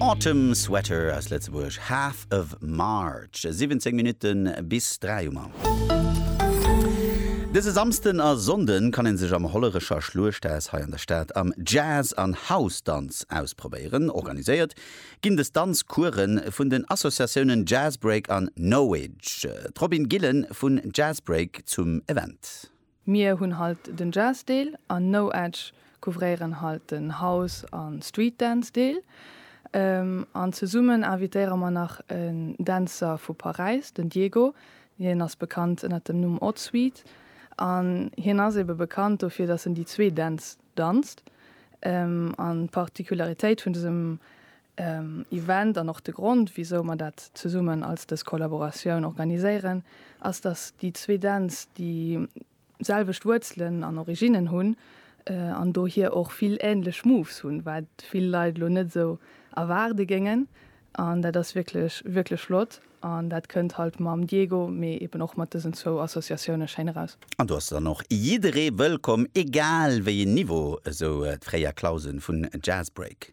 Autumn Sweater aus Lëtzebuerg, Half of March, 17 Minutte bis 3 um An. Dëse Samsden a Sonnden kann een sech am Hollerecher Schluechthaus hei an der Stad am Jazz an House Danz ausprobéieren. Organiséiert ginn des Danz Coursen vun den Associatiounen Jazzbreak an Knowedge. D'Robin Gillen vun Jazzbreak zum Event. Mir hunn halt den Jazz Deel an No Edge couvréieren halt den House an Street Dance Deel. An zesummen invitéiere mer nach en Dänzer vu Paräis, den Diego, hien ass bekannt ënnert dem Numm Odd Sweet an hien ass ebe bekannt dofir dass en déi zwee Dänz danzt. An d'Particularitéit vun dësem Event an och de Grond, wisou mer dat zesummen als dës Kollaboratioun organiséieren, ass, dass déi zwee Dänz déi selwecht Wuerzelen an Originnen hunn an dohier och vill änlech Moves hunn, wat vill Leit elo net esou erwaarde géingen. An dat ass wierklech, wierklech flott an dat kënnt halt mam Diego, mee eben och mat dësen zwou Associatioune schéin eraus. An do ass dann och jidderee wëllkomm, egal wéi een Niveau, esou d'Freya Clausen vun Jazzbreak.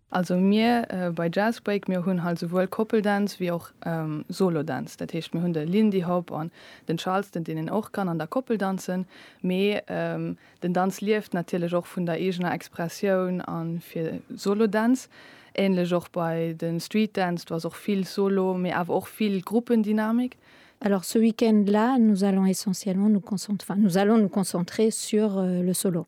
Also mir bei Jazzbreak, mir hunn hei souwuel Koppel Dance wéi och Solo Dance. Dat heescht mir hunn de Lindy Hop an den Charleston deen een och kann an der Koppel danzen, mee den Danz lieft natierlech och vun der eegener Expressioun a fir Solo Dance. Ähnlech och bei de Street Dance, do ass och vill Solo, mee awer och vill Gruppendynamik. Alors ce week-end là nous allons essentiellement nous concent enfin nous allons nous concentrer sur le solo.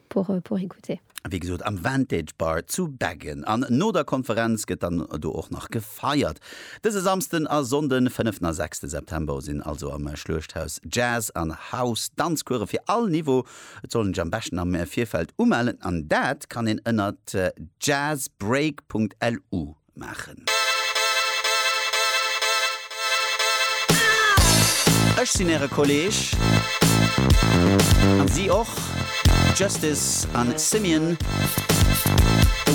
pour écouter. Wéi gesot am Vantage Bar zu Beggen an no der Konferenz gëtt dann do och nach gefeiert. Dëse Samsden a Sonnden, 5 a 6 de September sinn also am Schluechthaus Jazz an House Danzcoursë fir all Niveau. Et soll een sech am beschten am Virfeld umellen an dat kann een ënnert jazzbreak.lu. maachen. Ech sinn äre Kolleeg, an si och, Justice an Simeon,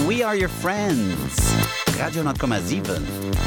We are your friends, Radio 10,7.